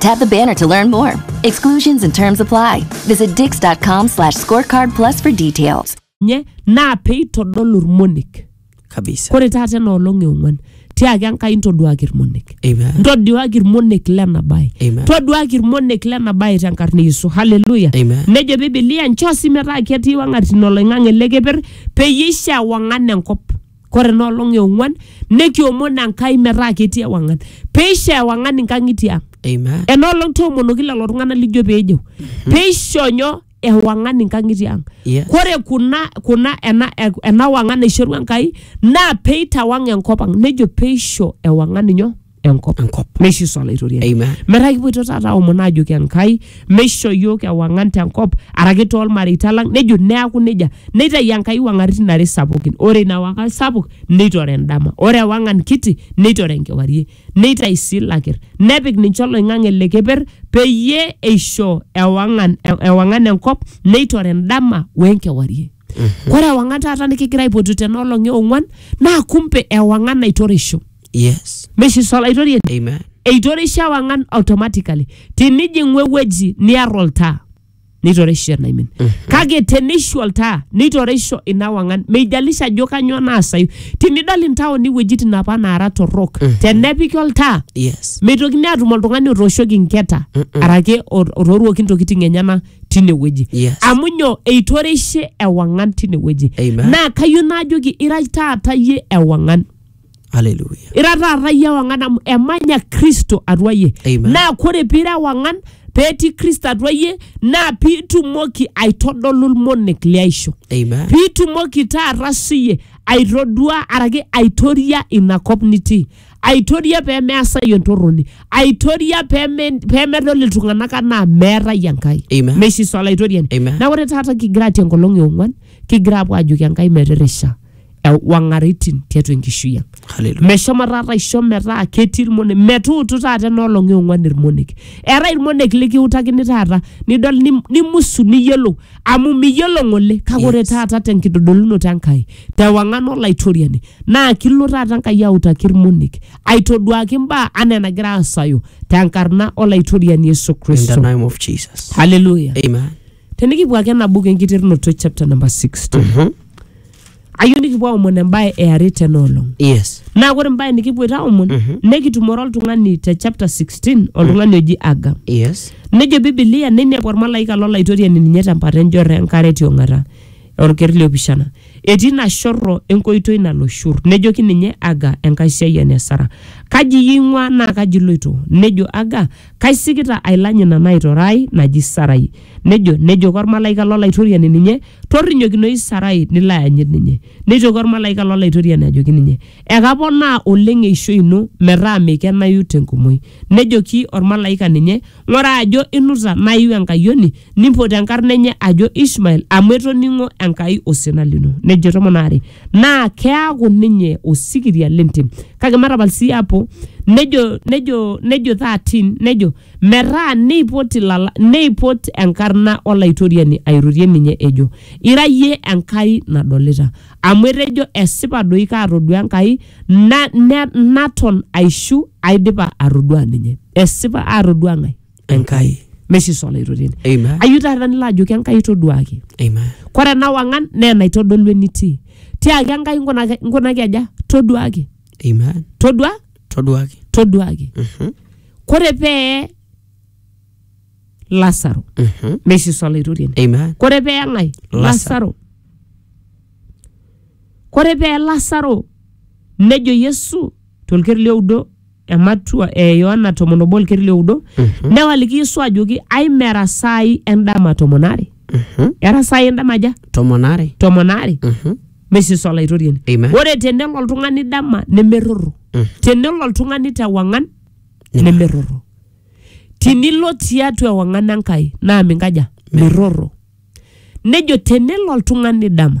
Tap the banner to learn more. Exclusions and terms apply. Visit dix.com slash scorecard plus for details. nye naa peitodolu irmonek kabisa kore taata ena olong eong'uan tiaki enkai ntoduaki irmonek Amen. ntoduaki irmonek lena bae Amen. toduaki irmonek lena bae tenkarna e yesu haleluya Amen. nejo bibilia nchoo sii metaa ketii wang'atin oloing'ang'e lekeper peyie eishaa wang'an enkop kore ena olong e ong'uan nekiomon Enkai metaa ketii ewang'an peisho ewang'an inkang'itie ang Amen. ena olong toomonoki lelo tung'anak lijo peejeu peisho nyoo ewang'an inkang'itie ang Yes. kore kuna kuna ena, ena wang'an naishorua Enkai naa peitawang enkop ang nejo peisho ewang'an nyoo enkop enkop meishu sa olaitoriani Amen. metaa kipuoito taata aomon aajoki enkai meisho yiok ewang'an tenkop araki toolmareita lang nejo neaku nejia neitayu enkai wang'aritin are sapukin ore ina wang'an sapuk neitore endama ore ewang'an kiti neitore enkewarie neitayu sii ilakir nepik ninche oloing'ang'e le keper peyie eisho ewang'an ewang'an enkop neitore endama wenkewarie ore ewang'an taata nikigira aipotu tena olong e ong'uan naa kumpe ewang'an naitorisho Yes. meshi solaitorien Amen. eitorisho ewang'an automatically tinijing'u ewueji niar oltaa neitorisho enaimin kake teneishu oltaa neitorisho ina wang'an meijalisha ajo kanyoo naasayu tinidol intaoni iwuejitin apa naara torrok tenepiki oltaa Yes. meitokini atum oltung'ani otooshoki inketa arake ot- otooruoki intokiting enyena tinewueji Yes. amu nyoo eitoreishe ewang'an tinewueji Amen. naa kayieu naajoki ira taata yie ewang'an Hallelujah. ira taata yie ewang'an amu emanya kristo atua yie Amen. naa kore piira ewang'an peetii kristo atua yie naa piitumoki aitodolu ilmonek liaisho Amen. piitumoki taata siye aitodua araki aitoria ina kop nitii aitoria pee measayu entorroni aitoria pee me- pee medol iltung'anak anaa meetai enkai Amen. meishiso olaitoriani Amen. na ore taata kigira atii enkolong eong'uan kigira apuo ajoki enkai metirisha wang'aritin tiatua enkishui ang Hallelujah. meshomo taata aisho metaa ketii irmonek metuutu taata enoolong eong'uan irmonek eetae irmonek likiutakini taata nidol nim- nimusu niyiolou amu miyiolo ng'ole kake ore Yes. taata tenkitodolunoto enkai tewang'an olaitoriani Naa kilo taata Enkai autaki ilmonek, aitoduaki imbaa anaa enagira aasayu tenkarna Olaitoriani Yesu In the Kristo. name of Jesus. Haleluya. Amen. Tenikipuo ake ena buku enkiterunoto chapter number 60. Mhm. Ayieu nikipuo aomon embae e are tena olong. Yes. Naa ore embae nikipuoita aomon nekitumore oltung'ani te chapter 16 oltung'ani oji Aga. Yes. Nejo Biblia neinepu olmalaika lolaitoriani ninye tempata enjorro enkare tiong'ata. Olker le opishana. Etii ina shorro enkoitoi nalo Shur. Nejoki ninye Aga, enkaisiayiani e Sara, Kaji iyie ing'uaa naa kaji iloito? Nejo Aga, Kaisikita ailany ina naitore ai naji Sarai. Nejo, nejoki olmalaika lo Laitoriani ninye, Torrinyokinoyu Sarai nilo ayanyit ninye. Neitoki olmalaika lo Laitoriani ajoki ninye, Ekaponaa oleng eishoi ino metaa meikenayu te nkumoi. Nejoki olmalaika ninye, Ng'ura ajo inuta naa iu enkayioni, nimpot enkarna enye ajo Ishmael, amu etoning'o Enkai osina lino. Nejo tomon aare, Naa keaku ninye osikiria le ntim. Kake matapal sii apo, nejo, nejo, nejo thirteen, nejo, Metaa neipot ilala, neipot enkarna Olaitoriani airorie ninye ejo, Ira iyie Enkai nadolita. amu etejo esipa doi kaatodua Enkai na, ne, naton aishu aidipa atodua ninye. Esipa aatodua ng'ae? Enkai. Meshiso olaitoriani. Amen. Ayieu taata nilo ajoki Enkai toduaki. Amen. Kore ena wang'an naa enaitodolu enitii. Tiaki Enkai nkunaki, nkunaki aja? Toduaki. Amen. Todua, Toduaki. toduaki. Mhm. Kore pee Lasaro, Mhm. meshiso olaitoriani. Amen. Kore pee ng'ae? Lasaro. Lasaro. Kore pee Lasaro nejo Yesu tolkeri lioudo ematua e Yohana tomon obo olkeri lioudo newaliki Yesu ajoki aimera saai endama tomon are era saai endama aja Tomon are. tomon are mesis olaitoriani Amen. ore tenelo oltung'ani dama nemerrorro tenelo oltung'ani tewang'an nemerrorro tinilo tiatua ewang'an Enkai naa minkaja? Mirrorro. Nejo tenelo oltung'ani dama